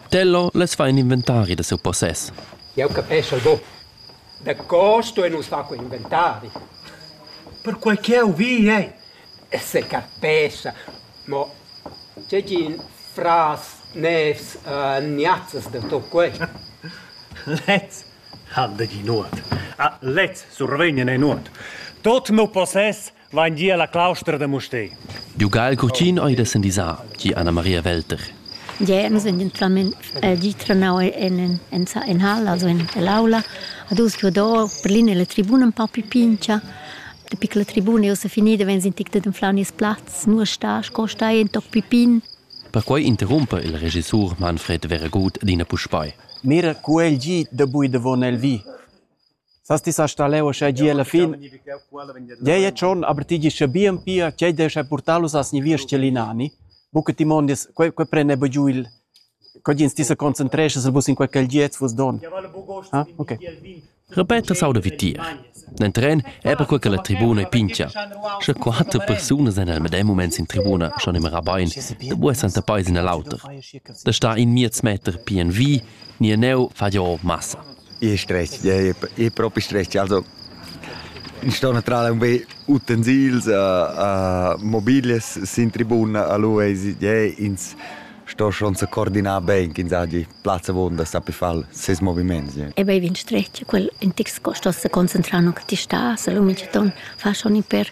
Tello less far in inventari da siu possess. Jau capeschel buc. Daco stuein nus far quei inventari? Perquei ch'jeu vi ei. Se capescha, mo tgegin fras nevs uh, niazzas de to quest. Lez han de gi nuot. A, ah, lez survegnen ei nuot. Tot mo possess vain gia la claustra da Mustér. Giugal Curtin ei da sendisar, gi Anna Maria Welter. Ja, nus en gentlament eh, di trenau en en in hall, also in l'aula, ad us che do per linea la tribuna un po più pincia. De piccola tribuna io se finida wenn sind ticte den flaunis platz, nur sta sco sta in toc pipin. Perquei interrumpe il regissur Manfred Veragut d'ina puspei. Mira, cu el gi da bui davon el vi. Sas ti sa staleu uschè gie alla fin? Gie, e tschon, aber ti gis scha bien pia ch'ei descha purtalus a sniviers celinani, buca ti mondies, quei, quei prende bu giu il, co gins ti sa concentresches el bus in quei gelgiez vus don. Ah, okay. Repeta sauda vi tier. Nel tren è per quel che la tribuna è pincia. Sche quattro persone sind al medem moment in tribuna schon immer rabain, da buessan der Paes in l'auter. Da sta in miez meter pien vi, ni neu fa jo massa. Ich stress, ja, ich, ich propi stress. Also, ich sto naturalmente un be utensils, uh, uh, mobiles sin tribuna a lui e ja, ins sto schon se coordinar ben, ins ha die Platz vonda, sa per far ses moviments. Ja. E bei vin stress, quel in tix sto se concentrare che ti sta, se lui mi ton fa schon per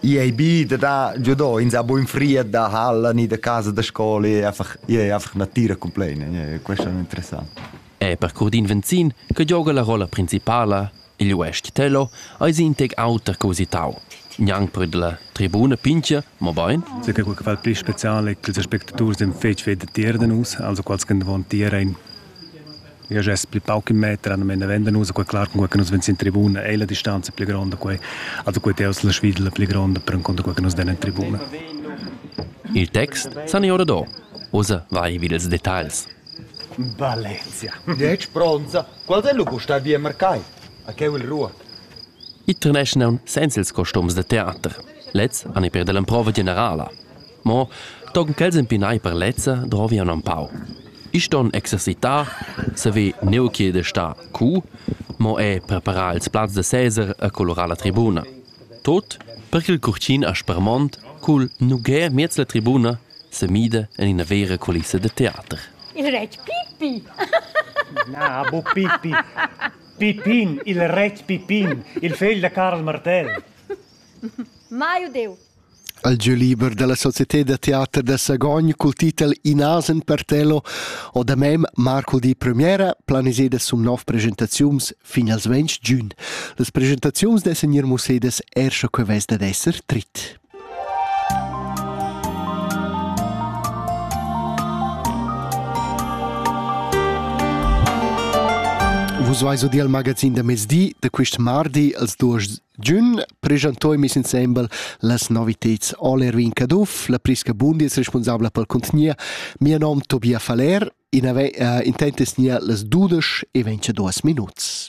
I ei bi da da giudò ins ha buin fried da halla ni da casa da scola e einfach e einfach natira complena, questo è interessant. E per Curdin Venzin, che gioga la rolla principala, il uestg Tello, eis in tec auter che usitau. Gnang per la tribuna pincha, mo bain? Sì, che quel che fa il più speciale è che gli spettatori sind fetg fedatier da nus, also quals che davon tieren Io gest pli pauc in meter, non venda nus, quei clar cun quei che nus vegn in tribuna, è la distanza più grande quei, also quei teus la svidla più grande per conto quei che nus den in tribuna. Il text san ora do. Osa vai vid ils details. Valencia. Dieci bronza. Qual è lu costar via mercai? A che il ruot? I treneschnan senza ils costums da teater. Lez han i per dell'improva generala. Mo tochen ch'els empinai per lezza drovian empau. I ston exercitar, saver neu che de star cu, mo er preparar ils plazs da seser e colorar la tribuna. Tot per ch'il curtin aspermont cul nugher miez la tribuna semida en ina vera culissa de teater. Il retg Pippi! Na, bu Pippi. Pippin, il retg Pippin, il fegl da Carl Martell. Mai udeu. al gieu liber dalla Società da teater da Sagogn cul titel In asen per Tello ho da mem Marco di Premiera planiseda sum nov presentaziuns fin als 20 giun. Las presentaziuns dessen ir musedas erscha que vess dad esser trit. Vus vais o di al magazin da mezdi da quist mardi als duos Giün presentoi meis insembel las noviteds All Erwin Caduff, la Prisca Bundis, responsabla pel contegner, mia nom Tobia Faller, in avair uh, intent es gnir las dudesch e ventadüas minuts.